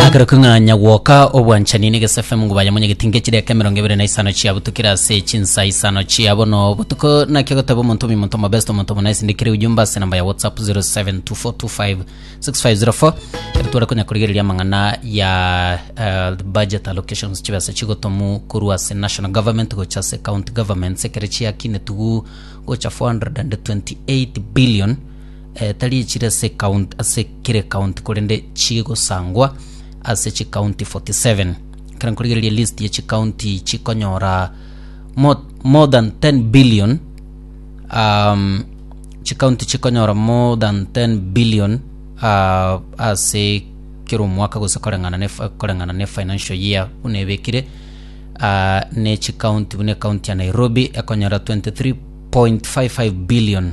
Akero king'anya gwoka obwanchani n'egesafe mungu baye monyegeti ngechidaeka emerongo ebere na isano chiabutukire ase chinsa isano chia bono botuko naki agoteba omonto omi omonto omobest omonto omona isindikire ujumbe ase namba ya whatsapp 0724256504 ere tware konya korigereria amang'ana ya eh, the budget allocations chibesa chigotomu korwa ase national government gocha ase county governments ekere chiakinetuguu gocha 428 billion tari chire ase count, ase kire county korende chigosangwa ase chi county 47 ekero nkorigereria list ye chi county chikonyora more, more than 10 billion um, chi county chikonyora more than 10 billion uh, ase kero omwaka gose koreng'ana ne fi- koreng'ana ne financial year buna ebekire uh, ne chi county buna county ya nairobi ekonyora 23.55 billion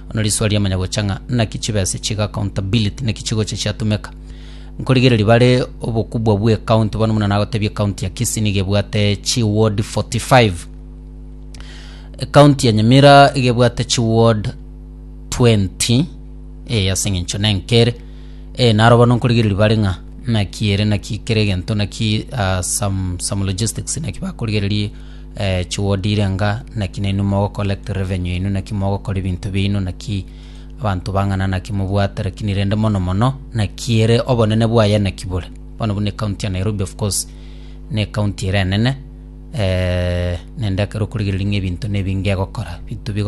Bono risuo riamanya gocha ng'a naki chibesa chiga accountability naki chigocha chiatumeka. Nkorigereria bare obokubwa bwe county bono muna nagotebia county ya Kisii niga ebwate chi ward 45. County ya Nyamira iga ebwate chi ward 20 eh ase eng'encho nenkere eh naro bono nkorigereria bare ng'a naki ere naki kere egento naki ah, some, some logistics naki bakorigereria Eh, chiwodire nga naki nainwe mogocollect revenue yainwe, naki mogokora ebinto biaino, naki abanto bang'ana naki mobwate, lakini rende mono mono naki ere obonene bwaye naki bore. Bono buna ecounty ya Nairobi of course na ecounty ere enene eh, naende ekero okorigereria ng'a ebinto na ebinge egokora, ebinto bigo